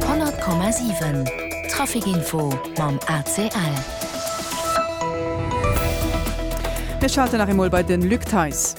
100,7 Trafic Info mam ACL. Mir schalten nach eemol bei den Luc Theis.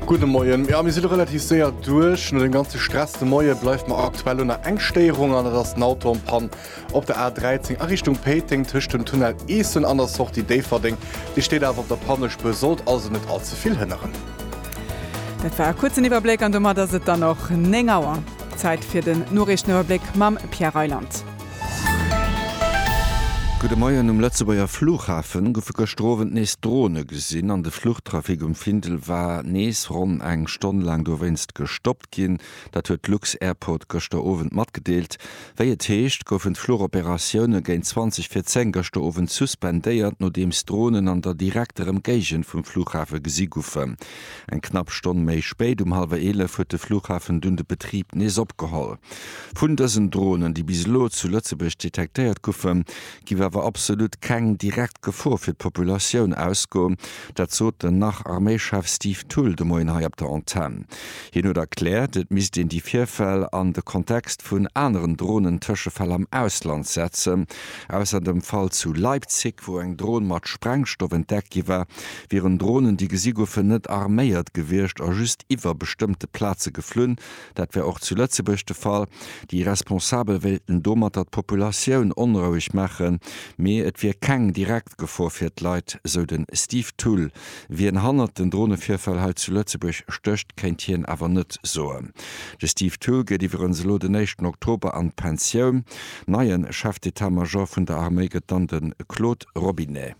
Gudde Moien. Jo, mir si lo relativ séier duerch. No dem ganze Stress de Moie bleift mer aktuell lo nach eng Stéierung an dat ass den Auto am Panne. Op der A 13 a Richtung Péiteng tëscht dem Tunnel Eessen an der Sortie Déifferdeng, déi steet awer op der Pannespuer, sollt also net all ze vill hënneren. Dat war e kuerzen Iwwerbléck an domat ass et dann och 9 Auer. Zäit fir den Noriichteniwwerbléck mam Pierre Reyland. Gudde Moien, Um Lëtzebuerger Flughafe goufe gëschter Owend nees Drone gesinn an de Fluchtrafic um Findel war nees ronn eng Stonn laang dowéinst gestoppt ginn. Dat huet d'Lux-Airport gëschter Owend matgedeelt. Wéi et heescht, goufen d'Fluchoperatioune géint 20 vir 10 gëschter Owend suspendéiert, nodeems Dronen an der direkter Emgéigend vum Flughafe gesi goufen. Eng knapp Stonn méi spéit, um hallwer 11, huet de Flughafen dunn de Betrib nees opgeholl. Vun dësen Dronen, déi bis elo zu Lëtzebuerg detektéiert goufen, giff awer absolut keng direkt Gefor fir d'Populatioun ausgoen. Dat sot den Nach-Arméichef Steve Thull de Moien hei op der Antenn. Hien huet erkläert, et misst een déi Virfäll an de Kontext vun aneren Dronen-Tëschefäll am Ausland setzen. Ausser dem Fall zu Leipzig, wou eng Dron mat Sprengstoff entdeckt gi war, wieren Dronen, déi gesi goufen, net arméiert gewiescht a just iwwer bestëmmte Plaze geflunn, Dat wär och zu Lëtzebuerg de Fall. Déi Responsabel wéilten domatter d'Populatioun onroueg maachen, mee et wier keng direkt Gefor fir d'Leit, sou de Steve Thull. Wien hannert den Dronevirfäll hei zu Lëtzebuerg stécht, kéint hien awer net soen. De Steve Thull geet iwwerens elo den éischten Oktober an d'Pensioun. Neien Chef d'Etat-Major vun der Arméi gëtt dann de Claude Robinet.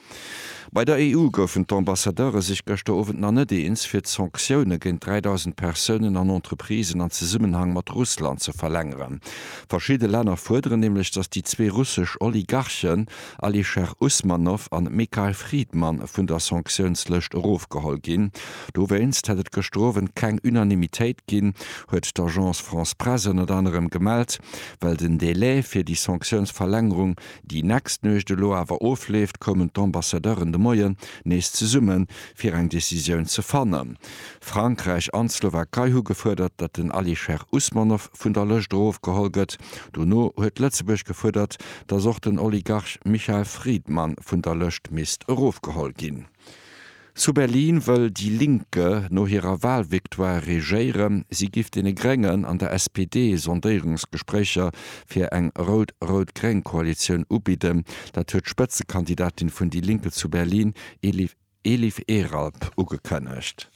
Bei der EU goufen d'Ambassadeure sech gëschter Owend nach net eens, fir d'Sanktioune géint 3.000 Persounen an Entreprisen an Zesummenhang mat Russland ze verlängeren. Verschidde Länner fuerderen nämlech, datt déi zwee russesch Oligarchen Alisher Usmanov an Mikhail Fridman vun der Sanktiounslëscht erofgeholl ginn. Dowéinst hätt et gëschter Owend keng Unanimitéit ginn, huet d'Agence France-Presse ënnert anerem gemellt, well den Delai fir déi Sanktiounsverlängerung Déi nächst Nuecht elo awer ofleeft, koumen d'Ambassadeuren de Moien nees zesummen, fir eng Decisioun ze fannen. Frankräich an d'Slowakei hu gefuerdert, datt den Alisher Usmanov vun der Lëscht erofgeholl gëtt. Dono huet Lëtzebuerg gefuerdert, datt och den Oligarch Michael Friedman vun der Lëscht misst erofgeholl ginn. Zu Berlin wëll déi Linke no hirer Walvictoire regéieren. Si giff deene Gréngen an der SPD Sondéierungsgespréicher fir eng rout-rout-gréng-Koalitioun ubidden. Dat huet d'Spëtzekandidatin vun déi Linke zu Berlin, Elif Elif Eralp, ugekënnegt.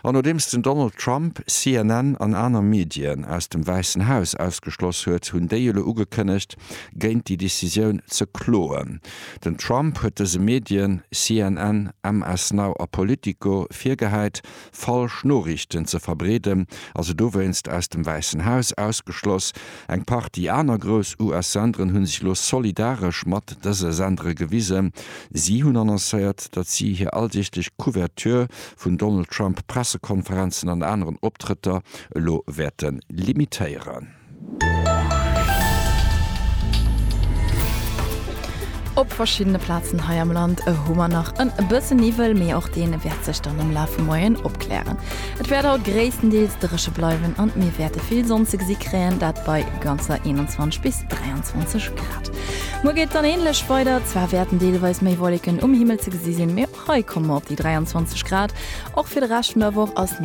An nodeems den Donald Trump CNN an aner Medien aus dem Wäissen Haus ausgeschloss huet, hunn déi elo ugekënnegt, géint déi Decisioun ze kloen. Den Trump huet dëse Medien, CNN, MS Now a Politico, virgehäit, falsch Noriichten ze verbreeden a se dowéinst aus dem Wäissen Haus ausgeschloss. Eng Partie aner grouss US-Senderen hu sech elo solidaresch mat dëse Sendere gewisen. Si hunn annoncéiert, datt si hir alldeeglech Couverture vun Donald Trump Pressekonferenzen an aneren Optrëtter elo wäerte limitéieren. Op verschiddene Plazen hei am Land hu mer nach e bësse Niwwel, mee och dee wäert sech dann am Laf vum Moien opklären. Et wäert haut gréisstendeels dréche bleiwen an mir wäerte vill Sonn ze gesi kréien, dat bei ganzer 21 bis 23 Grad. Muer geet et dann änlech weider, zwar wäerten deelweis méi Wolleken um Himmel ze gesi sinn, mee och hei komme mer op déi 23 Grad. Och fir de Rescht vun der Woch ass.